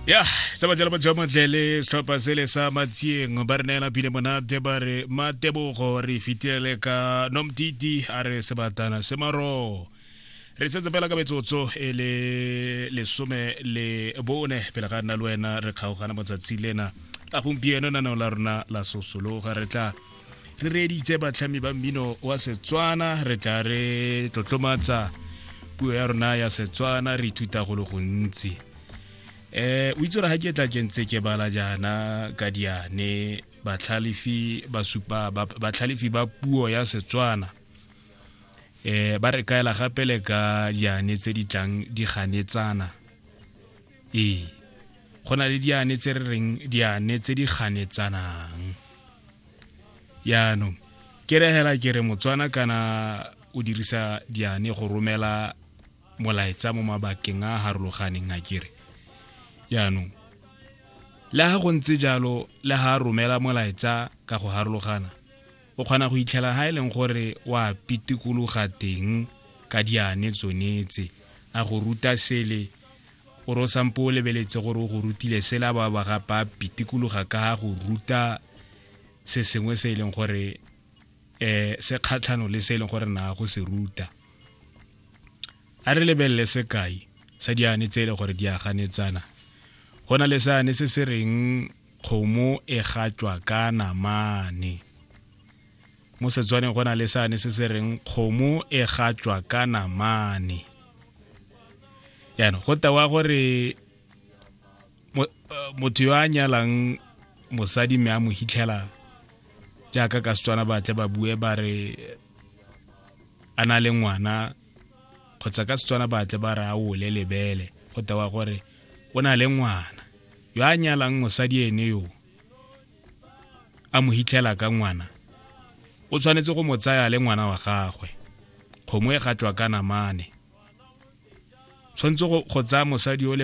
ya sa bajala ba jamotle le setlhopha sele sa matsieng ba re neela phile monate ba re matebogo re fitilele ka nomtiti a re sebatana se maro re setse fela ka metsotso e le lesome le bone pele ga nna le wena re kgaogana motsatsi lena la gompieno naneo la rona la sosologa re tla re reeditse batlhami ba mmino wa setswana re tla re tlotlomatsa puo ya rona ya setswana re ithuta go le gontsi eh o itse gore ga ke tla ke ntse ke bala jaana ka diane batlhalefi ba supa batlhalefi ba puo ya setswana eh ba re kaela gape le ka diane tse di tlang di ganetsana ee go na le diane tse re reng diane tse di ganetsanang yaanong ke regela ke re motswana kana o dirisa diane go romela molaetsa mo mabakeng a harologaneng a kere yaanong le ga go ntse jalo le ga a romela molaetsa ka go harologana o kgona go itlhela ga e leng gore wa pitikologa teng ka diane tsonetse a go ruta sele o re o sampo o lebeletse gore o go rutile sela ba ba ga ba pitikologa ka ga go ruta se sengwe se e leng gore um se kgatlhano le se e leng gore na go se ruta a re lebelele sekai sa diane tse e leng gore di a ganetsana go na le seane se se reng kgomo e gatswa ka namane mo setswaneng go na le sane se se reng kgomo e gatswa ka namane yaanong go tewa gore eh, motho yo a nyalang mosadi mme a mo hitlhela jaaka ka setswana batle ba bue ba re a na le ngwana kgotsa ka setswana batle ba re a ole lebele go tewa gore o na le ngwana yo a nyalang mosadi ene yoo a mo hitlhela ka ngwana o tshwanetse go mo tsaya le ngwana wa gagwe kgomo e gatwa ka namane tshwanetse go tsaya mosadi o le